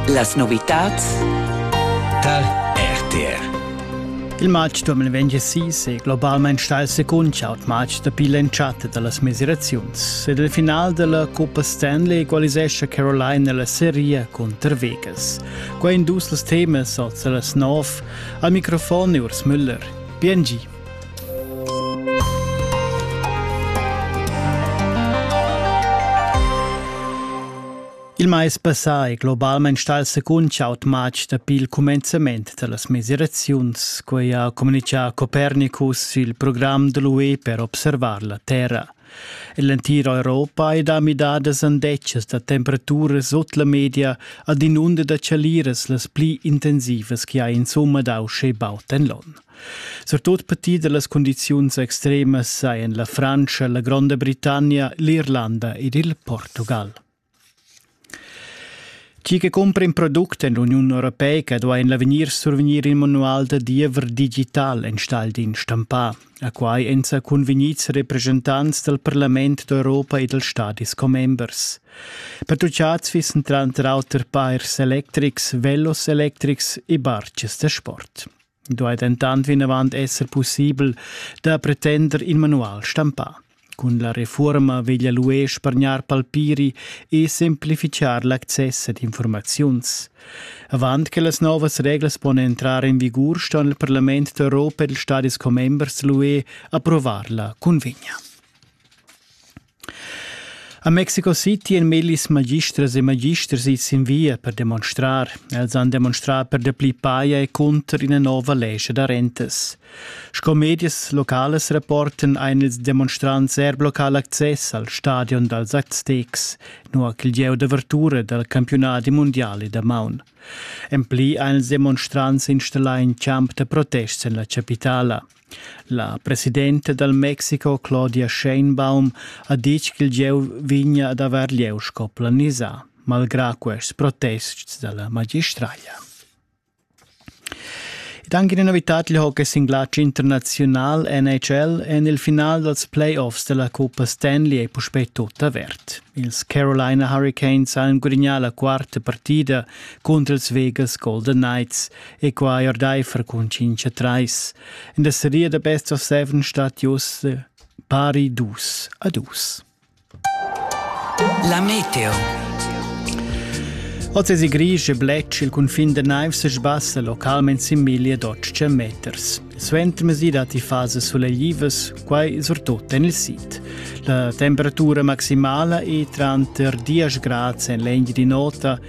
Las novitads tar RTR. Il matg 2026 è globalmain stà il secund chaut matg dapi l'entschatta da las mesiraziuns ed il final da la Coppa Stanley equalisescha Caroline nella seria cunter Vegas. Quai in dus las temas oz a las 9. Al microfon è Urs Müller. Bien Il mais passà è globalmain stà il secund chaud matg dapi il cumenzament da las mesiraziuns, quai ha communitgà Copernicus il program da l'UE per observar la Terra. En l'entira Europa è da midadas andetgas da temperaturas sut la media ad inunda da chaliras las pli intensivas che ha insumma dà uschè baud en l'onn. Surtut petit da las cundiziuns extremas sajan la Frantscha, la Gronda Britannia, l'Irlanda ed il Portugal. Chi che cumpra in product en l'Uniun Europeica duai en l'avegnir survegnir il manual da diever digital enstagl d'in stampà, a quai èn sa convegnids representants dal Parlament d'Europa e dals stadis commembers. Pertuchads fissen tranter auter pairs electrics, velos electrics e bartges da sport. I duai dentant vinavant esser pussibel da pretender in manual stampà. Cun la refurma veglia l'UE spargnar palpiri e semplifichar l'access ad informaziuns. Avant che las novas reglas pon entrar in vigur, sto il Parlament d'Europa e il Stadis commembers dell'UE approvar la convegna. A Mexico City han millis magistras e magisters its in via per demonstrar. Els han demonstrà per dapli paia e cunter ina nova lescha da rentas. Sco medias localas rapportan ein ils demonstrants er local access al stadion dals Aztecs, nua ch'il gieu d'avertura dal campionadi mundiale damaun. En pli ein ils demonstrants installà in camp da protest en la capitala. La presidenta dal Mexico Claudia Sheinbaum ha ditg ch'il gieu vegnia ad avair lieu sco planisà, malgrà quests protests da la magistraglia. Ed anche una novità il hockey singlatg internazional NHL en il final dals playoffs della Coppa Stanley è puspè tut avert. Ils Carolina Hurricanes hanno guadagnato la quarta partita contro ils Vegas Golden Knights e quai ordaifer cun cincha trais. In da seria da Best of Seven stat jos pari dus a dus. La meteo. Oz es i gris e bletsch il cunfin da naivs e sbassa localment sin miglia d'otg meters. Suenter mesi datti fases suleglivas, quai surtut en il sid. La temperatura maximala è tranter 10 grad en l'egn di nota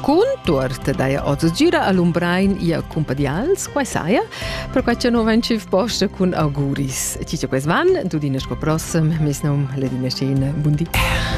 Cun tuorta daja oz gira a Lumbrein ia cumpadials, quai saja, perquai cha no vain tschüf posta cun auguris. Cicio ques van, tudina sco prossem, mes nom Ledina Scena, bundi.